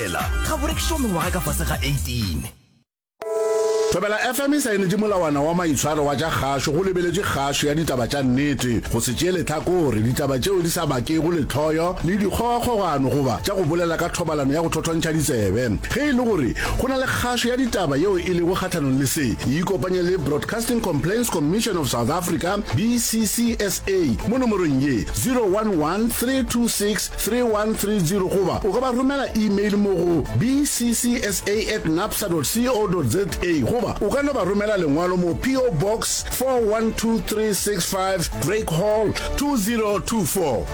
fela ga bo rekišo mengwaga ka fase ga 18 Thobela FM e saenetše molawana wa maitshwaro wa tša kgašo go lebeletše kgašo ya ditaba tša nnete, go se tšee lehlakore, ditaba tšeo di sa bakego lehloyo le dikgogakgogano goba tša go bolela ka thobalano ya go thothontšha ditsebe. Ge e le gore go na le kgašo ya ditaba yeo e lego kgahlanong le se, e ikopanye le Broadcasting Complaints Commission of South Africa, BCCSA, mo nomorong ye, 011 326 3130 goba o ka ba romela email mo go bccsa at napsa dot co dot za goba o ka no ba romela lengwalo mo PO Box 412365 Drake Hall 2024.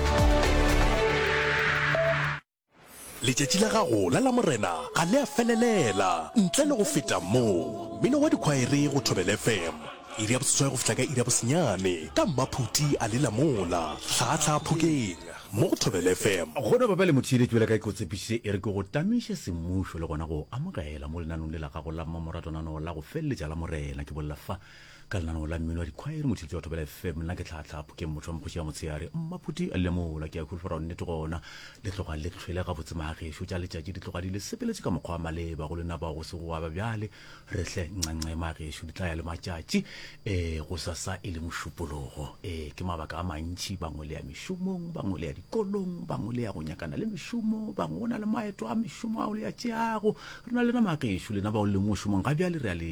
letšatši la gago la lamorena ga le a felelela ntle le go feta moo mmino wa dikhwaere go thobel fm iri ya boseswai go fihla ka iri ya bosenyane ka mmaphuti a le lamola hlahatlhaha phokeng mo go Thobela FM. Go no ba ba le motheeletši bjale ka ge ke go tshepišitše e re ke go tamiše semmušo le gona go o amogela mo lenanong le la gago la mmamoratwanano la go feleletša la Morena. Ke bolela fa ka lenanong la mmino wa dikhwaere motheeletši wa Thobela FM. Nna ke Tlhaatlhaa Phokeng motho wa Mokgoši ya Motshehare. Mmaphuti a lile mola. Ke a holofela gore nnete gona le tloga le hlwele gabotse. Maagešo tša letšatši di tloga di le sepeletše ka mokgwa wa maleba go lena bao go sego gwa ba bjale. re hle ncancema gešo di tla ya le matšatši um go sasa e le mošupologo um ke mabaka a mantšhi bangwe le ya mešomong bangwe le ya dikolong bangwe le ya go nyakana le mešomo bangwe go na le maeto a mešomo ao le ya tšeago re na le nama gešo lena bao le leng mošomong ga bjale re ya le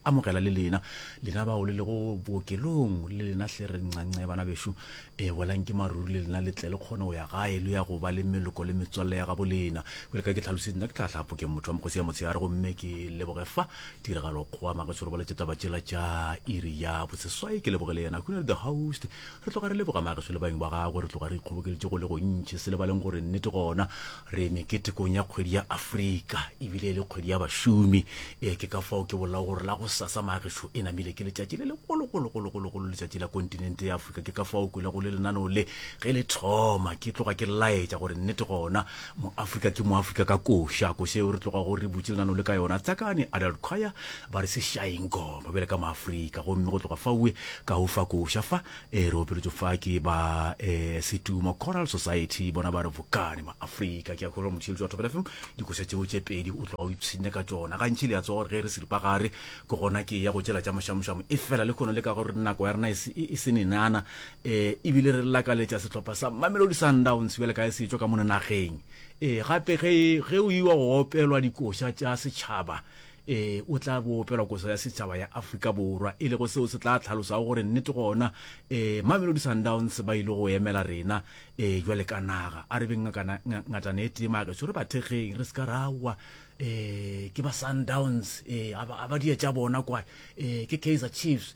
amogela le lena lena bao le lego bookelong le lena hle re ncancebana bešo Ee, boelang ke maruri le lena le tle le kgone go ya gae, lo ya go ba le meloko le metswalle ya gabo lena. Bjale ka ke tlhalositse, nna ke tla hlapho ke motho wa Mokgosi ya motshegare gomme ke leboge fa tiragalo kgowa Mageso re boletše taba tšela tša iri ya boseswai. Ke leboge le yena Hunary the host. Re tloga re leboga Mageso le baeng ba gagwe, re tloga re ikgobokeleditše go le gontši, se lebaleng gore nnete gona Re meketekong ya kgwedi ya Afrika, e bile e le kgwedi ya bašomi. Ee, ke ka fao ke bolago gore la gosasa, Maagešo, e namile ke letšatši le legologologologologolo, letšatši la kontinente ya Afrika. Ke ka fao o kwelago le lenaneo le ge le thoma, ke tloga ke laetša gore nnete gona, Moafrika ke Moafrika ka koša. Koša yeo re tlogago re butše lenaneo le ka yona, Tsakane Adult Choir ba re, Se šaeng goma bjale ka Maafrika. Gomme go tloga faue, ka o fa koša fa, E re opeletšwe fa ke ba e, Setumo Choral Society, bona ba re vukane maafrika. Ke a kgolwa motheeletši wa Thobela FM dikoša tšeo tše pedi o tloga o ipshinne ka tšona. Gantši le a tswa gore ge re seripagare ke gona ke ya go tšela tša mošamošamo, efela le kgono le ka gore nako ya rena e, e, e senenana e, ebile re lakaletša sehlopha sa Mamelodi Sundowns bjale ka e se tšwa ka mona nageng. E, gape ge, ge o iwa go opelwa dikoša tša setšhaba Ee, o tla bo opelwa koso ya setšhaba ya Afrika Borwa, e lego seo se tla tlhalosago gore nnete gona ee, Mamelodi Sundowns ba ile go emela rena ee, bjale ka naga. A re beng ngakana, nga, ngatana e tee mageso, re ba thekgeng, re se ka ra wa ee, ke ba Sundowns ee, a ba, a ba dietša bona kwa ee, ke Kaizer Chiefs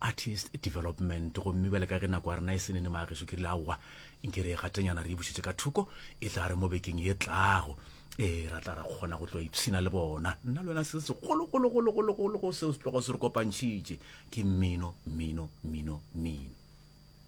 artist development gomme bjale ka ge nako ya rena e senene maageso ke rile aowa nke re e gatenyana re e bušetse ka thoko e tla re mo bekeng ye tlago ee ra tla ra kgona go tloa ipshina le bona nna le wena se segologologologologolo seo setlogo se re kopantšhitše ke mmino mmino mmino mmino